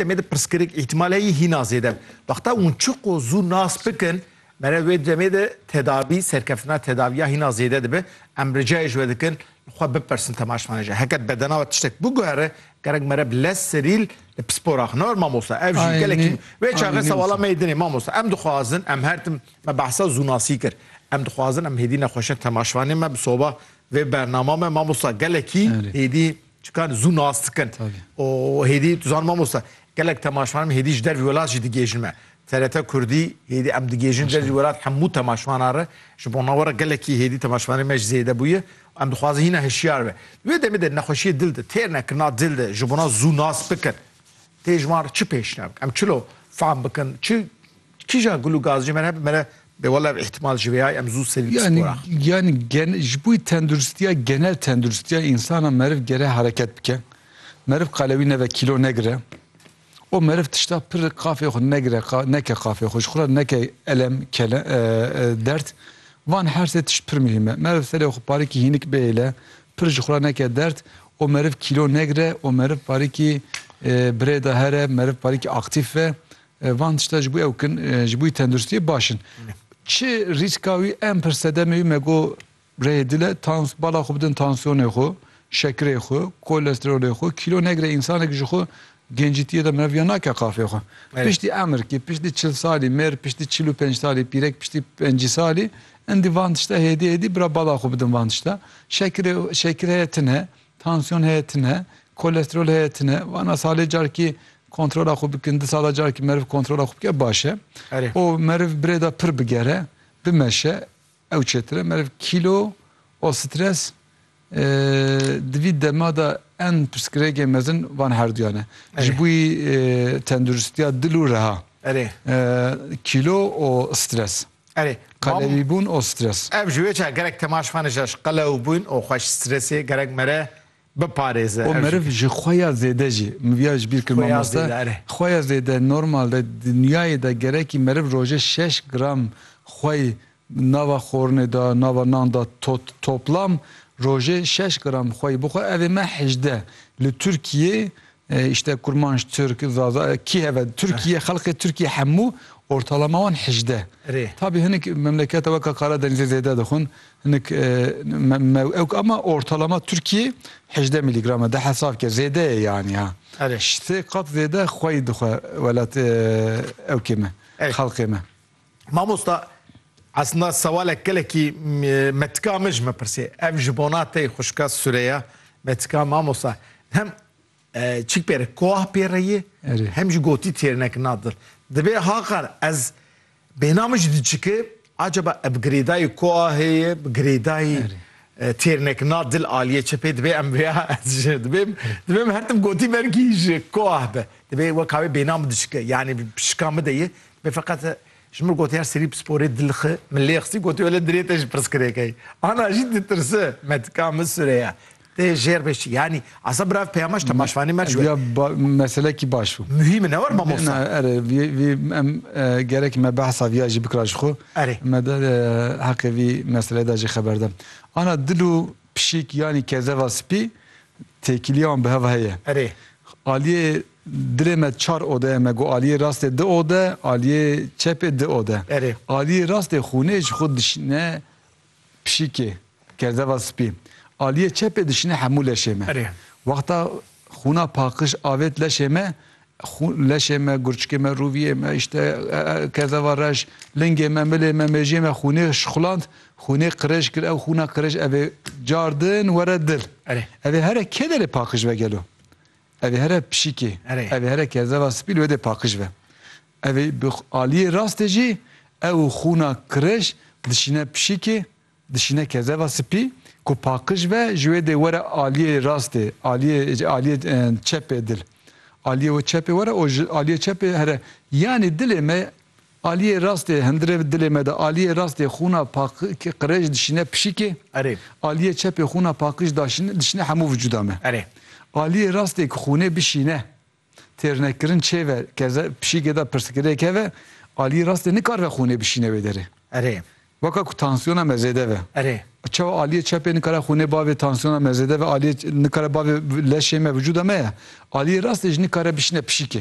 demê de pirsgirêk îhtimal heye hîna zêde be. Wexta hûn çi ku zû nas bikin, mere wê demê de tedavî, serkeftina tedaviya hîna zêde dibe. Em ricayê ji we dikin li xwe bipirsin temaşvana jî. Heke di bedena we tiştek biguhere, gerek mere bi lez serî li pispora xwe. Ne war mamosta, ev jî gelekî wê çaxe sewala me yê dinê. Mamosta, em dixwazin, em her tim me behsa zûnasî kir. Em dixwazin em hêdî nexweşin temaşvanê me bi soba vê bernama me. Mamosta gelekî hêdî Çikan zû nas dikin. O hêdî tu zan mamosta gelek temaşvanên hêdî ji dervî welat jî digêjin me. TRT Kurdî hêdî em digêjin dervî welat hemû temaşvanan re. Ji bo na were gelekî hêdî temaşvanê me jî zêde bûye û em dixwazin hîna hişyar be. Di wê demê de nexweşiyê dil de têr nekin na dil de ji bo na zû nas bikin tê ji wan re çi pêşinan bikin? Em çilo fam bikin? Çi Kîjan gul û gaz jî me hebe me re bê wela ev îhtimal ji vê yayê em zû serî pişt gora. Yani yani ji bo tenduristiya genel tenduristiya însana meriv gere hereket bike. Meriv qale wî neve kîlo negire û meriv tişta pir qafê xwe negire neke qafê xwe ji xwe re neke elem kele derd van her sê tişt pir muhîm e. Meriv serê xwe parêkî hînik bihêle pir ji xwe re neke derd û meriv kîlo negire û meriv parêkî birêda here meriv parêkî aktîf be Van tişta ji bo ew kin ji bo tenduristiyê baş in. Çi rîska wî em pir sedemê wî me got rêyê dil e tans bala xwe bidin tansiyonê xwe, şekirê xwe, kolesterolê xwe, kîlo negire însanek ji xwe gencîtiyê de meriv ya nake qafê xwe. Piştî emirkî, piştî çil salî mêr, piştî çil û pênc salî pîrek, piştî pencî salî endî van tişta hêdî hêdî bira bala xwe bidin van tişta. Şekirê şekir heye tune, tansiyon heye tune, kolesterol heye tune. Vana salê carkî Kontrola xwe bikin, di sala carekî meriv kontrola xwe bike baş e. Erê. O meriv birê de pir bigere, bimeşe, ew çêtir e. Meriv kîlo û stres e, divî dema de en pirsgirêkên mezin van herduyan e. Erê. Ji boî e, tenduristiya dil û reha. Erê. E, kîlo û stres. Erê. Mam, Qelewîbûn û stres. ev ji wê çar gerek temaşvanê ji qelewbûn û xweş stresê gerek mere biparêze. O meriv ji xwe ya zêde jî, min viya ji bîr kir mamoste, xwe ya zêde normal de dinyayê de gerekî meriv rojê şeş gram xwe yê nava xwarinê de, nava nan de tot toplam rojê şeş gram xwe yê bixwe, ev ê me hejdeh. Li Tirkiyê İşte Kurmanc, Türk, Zaza, kî heve Türkiye, xelqê Türkiye hemû ortalama wan hejdeh. Tabî hinik memleketa weka Karadenizê zêde dixwin, hinik ewk ama ortalama Türkiye hejdeh mîlîgram e. De hesab ke zêde ye yanî ha. Sê qat zêde xweyî dixwe welat ewkê me, xelqê me. Mamosta esnda sewalek gelekî me tika min ji min pirsê. Ev ji bona te xwişka Sureya me tika mamosta hem çîk pêre kuah pêre yê hem jî gotî têrnek na dil. Divê haqar ez bêhna min jî diçike acaba ev girêdayî kuahê ye bi girêdayî têrnek na dil aliyê çi pê divê em vêya ez ji divêm divêm her tim gotî belkî ji kuah be. Divê weka wê bêhna min diçike yanî pişika min de yê Bê feqet e, ji min gotiya serî bi sporê dilixi, min lê xisî gotiyo lê dirê te ji pirsgirêk heye. Ana jî ditirse, me tika min sûre ya. Tê jêr bê çi? Yanî asa bira ev peyama ji te başvanê merc be. Ya meselekî baş bû. Muhîm e ne war mamosta. Erê vî vî em gerek me behsa vîya jî bikira ji xwe. Erê. Me de heqê vî meseleyê de jî xeber de. Ana dil û pişik yanî kezeva spî Têkilîya wan bi hev heye. Erê. Aliyê dilê me çar odeyê me got aliyê rastê di ode, aliyê çepê di ode. Erê. Aliyê rastê xûnê ji xwe dişîne pişîkê, kerdeva spî. Aliyê çepê dişîne hemû leşê me. Erê. Wexta xûna paqiş avêt leşê me, Xû leşê me, gurçikê me, rûviyê me, îşte kedeva rej, lingê me, milê me, mêjiyê me xûnê şixuland, xûnê qirêj kir, ew xûna qirêj evê car din were dil. Erê. Evê here kê derê paqij be gelo? Evê here pişikê, Erê. evê here kedeva spî li wê dê paqij be. Evê bi aliyê rastê jî ew û xûna qirêj dişîne pişikê, Dişîne kezeva spî ku paqij be ji wê dê were aliyê rastê, aliyê aliyê çepê dil. Aliyê we çepê were û ji aliyê çepê here. Yanî dilê me aliyê rastê hundirê dilê me de aliyê rastê xûna paq qirêj dişîne pişikê. Erê. Aliyê çepê xûna paqij daşîne dişîne hemû vücuda me. Erê. Aliyê rastê ku xûnê bişîne. Têrnekirin çê ve ke ze pişîkê de pirsgirêk heve, aliyê rastê nikaribe xûnê bişîne wê derê. Erê. Weka ku tansiyona me zêde be. Erê. Çawa aliyê çepê nikare xûnê bavê tansiyona me zêde be, aliyê nikare bavê leşê me, vücuda me ye. Aliyê rastê jî nikare bişîne pişîkê.